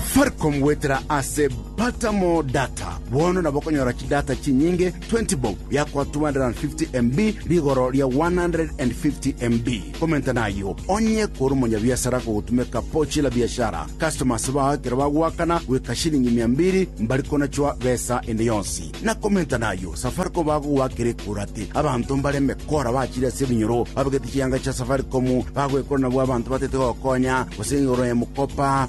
Faricom goetera ase Pata More Data. Bono nabo okonyora chidata chinyinge 20 bob biakoa 250 MB rigoro ria 150 MB. Komenta nayio onye kore omonyabiasara kogotumeka Pochi la Biashara. Customers bao ekero bagoakana goika shilingi mia mbiri mbari konachwa besa ende yonsi. Na komenta nayio Safaricom bagogoakera ekorati. Abanto mbareme kora bachire ase ebinyoro babegete chianga chia Safaricom bagwekora nabwo abanto batete gokonya gose igoro ya mokopa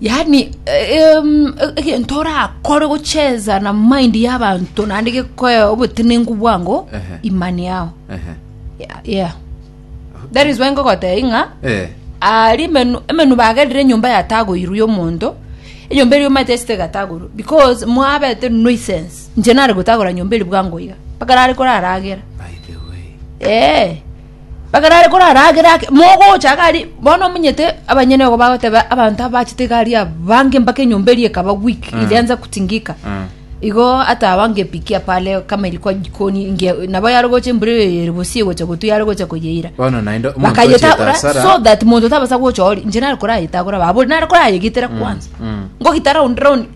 Yaani em, egento orakore gocheza na mind y'abanto naende gekoe obotenenku bwango Ehe. imani yao Ehe. yeah, yeah. that is why ngogotei ng'a Eh. ari emenu emenu bagerire enyomba yatagoirwe y'omonto enyomba eria omanyete esete egatagorwa because mwabete noisense inche nare gotagora nyomba eri bwango iga mpaka nare koraragera By the way. ee Ekero are korara agere ake, mogocha iga aria, bono omonyete abanyene igo bagoteba abanto abachete iga aria abange mpaka enyomba eria ekaba weak, ilianza kutingika. Igo atabange epiki apa are kama eri kwa jikoni, ingia nabo yarogocha embura eyo ere bosie egocha gotwa yarogocha koyeira. Bono naende omonto ochete Bakayetagora asara. so that monto tabasa gocha oria, inche nare korayetagora babori, nare korayegetera kwanza. mm. Ngogita round round.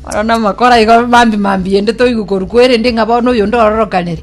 Oro namakora igo mambi mambi ende toigwa korwa kwa erende ng'a bono oyonde ororokanere.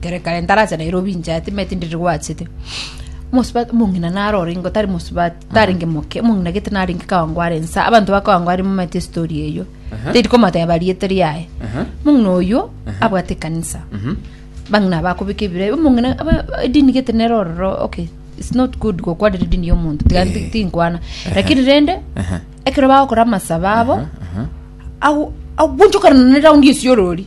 kere kare ntarache Nairobi inche ati me tindi rigwachete omosubati omong'ina naro orengo tari mosubati tarenge moke omong'ina gete narenge kawangware nsa abanto bakawangware momanyete story eyio teri komoteba riete riaye omong'ina oyio abwate ekanisa bang'ina bakobeka ebira omong'ina aba- edini gete nere ororo okay it's not good gokwanera edini ya omonto tiga ti- tinkwana lakini rende ekero bagokora amasabo abo ago- agwanchokana na eraundi esiorori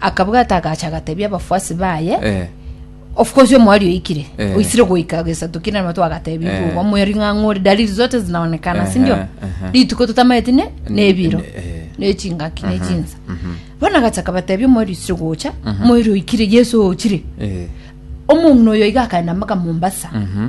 Akabwata agacha agatebia abafuasi baye, Eh. of course omwari oikire Eh. oisire goika gesato kina nabo twagatebi Eh. igo omweri ng'ang'a ore dalili zote zinaonekana Ehe, sindio ehe. rituko totamaeti ne nebiro Eh. nechingaki nechinsa bono agacha akabatebia omweri oisire gocha omweri oikire yesu ochire Eh. omong'ina oyo iga akaenda mpaka mombasa Mhm.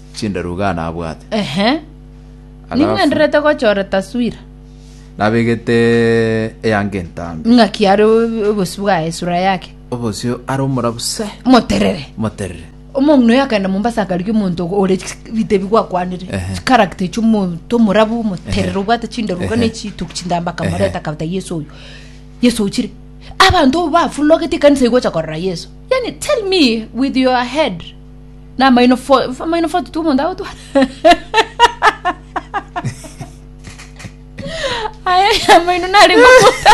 chindaruga nabwate. Ehe. Alafu- Ning'wenderete gochora taswira. Nabegete eyange entambe. Ng'aki are o- obosio bwaye, sura yake. Obosio are omorabu se, Moterere. moterere. Omong'ina oyo akaenda Mombasa akarigia omonto ogo ore chik- bitebia gwakwanire. Ehe. Character echio omonto omorabu, omoterere, obwate chindaruga Ehe. na echituki chintambe akamoreta Ehe. akabata Yeso oyo. Yeso ochire. Abanto bafulogete ekanisa igocha korora Yeso. Yaani tell me with your head. na amaino fo amaino fo tutu omonto agotwa aye amaino nare ngomota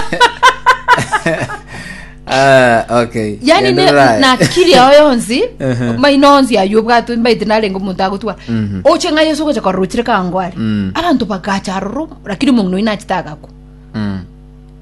Ah, okay. yani ne- Endelea. na akili yao yonsi Ehe. maino onsi ayo obwate mbaite narenge omonto agotwa Mhm. oche ng'a yesu ogocha korora ochire kangware Mm. abanto bagacha aroro lakini omong'ina oyo nachete agakwa Mm.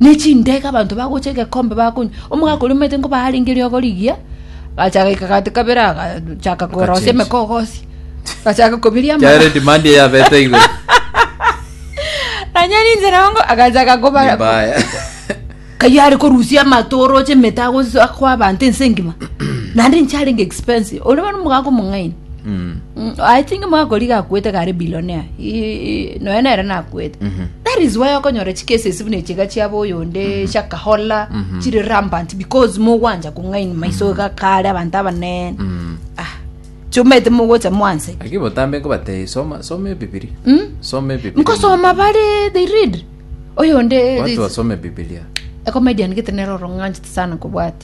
ne chindege, abanto bagocha egekombe bakonywa. Omogaka oria omanyete nkoba arenge riogo rigiya, agacha agaika gati kabere, agachaka korosia Agachinja. emekogosi, agachaka kobiria amara. Chiaro demand eyabete igoro. Nanyari inche nongo agachaka koba Nimbaya. kaiyo are korusia amato oroche emete agosoa kwa abanto ense engima naende inche arenge expensive ore bono omogaka omong'aini Mm. Mm, I think mwakoriga akwete gare billionaire I- noe nere nakwete that is why okonyora chikesesi buna echiga chiabo oyonde chiakahola chiri rampant because mogwanja kong'aini maiso iga kare abanto abanene Mm. ah chumete mogocha mwanse Lakini botambe nkobatei soma soma ebibilia. Mm. Soma ebibilia. nkosoma bare they read oyonde Watu wasome Biblia. a comedian gete nero orong'anchete sana kobwati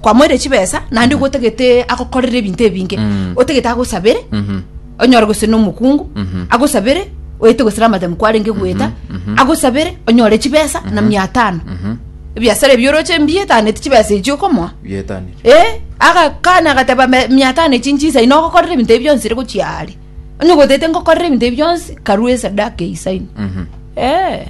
kwamoire chibesa naende igo otagete agokorere ebinto ebinge Mm. otagete agosabere Mhm. onyore gose nomokungu Mhm. agosabere oete gose ramadam kwarenge gweta mhm. agosabere onyore chibesa na mia tano Mhm. ebiasara ebi oroche mbiyetaneti chibesa echi okomoa Bietanire. Eh, agakana agateba "Me- mia tano echi nchisa ino ogokorera ebinto ebi bionsi ere gochia are onye gotete ngokorera ebinto ebi bionsi karue esadaka eisaino Mhm. Eh.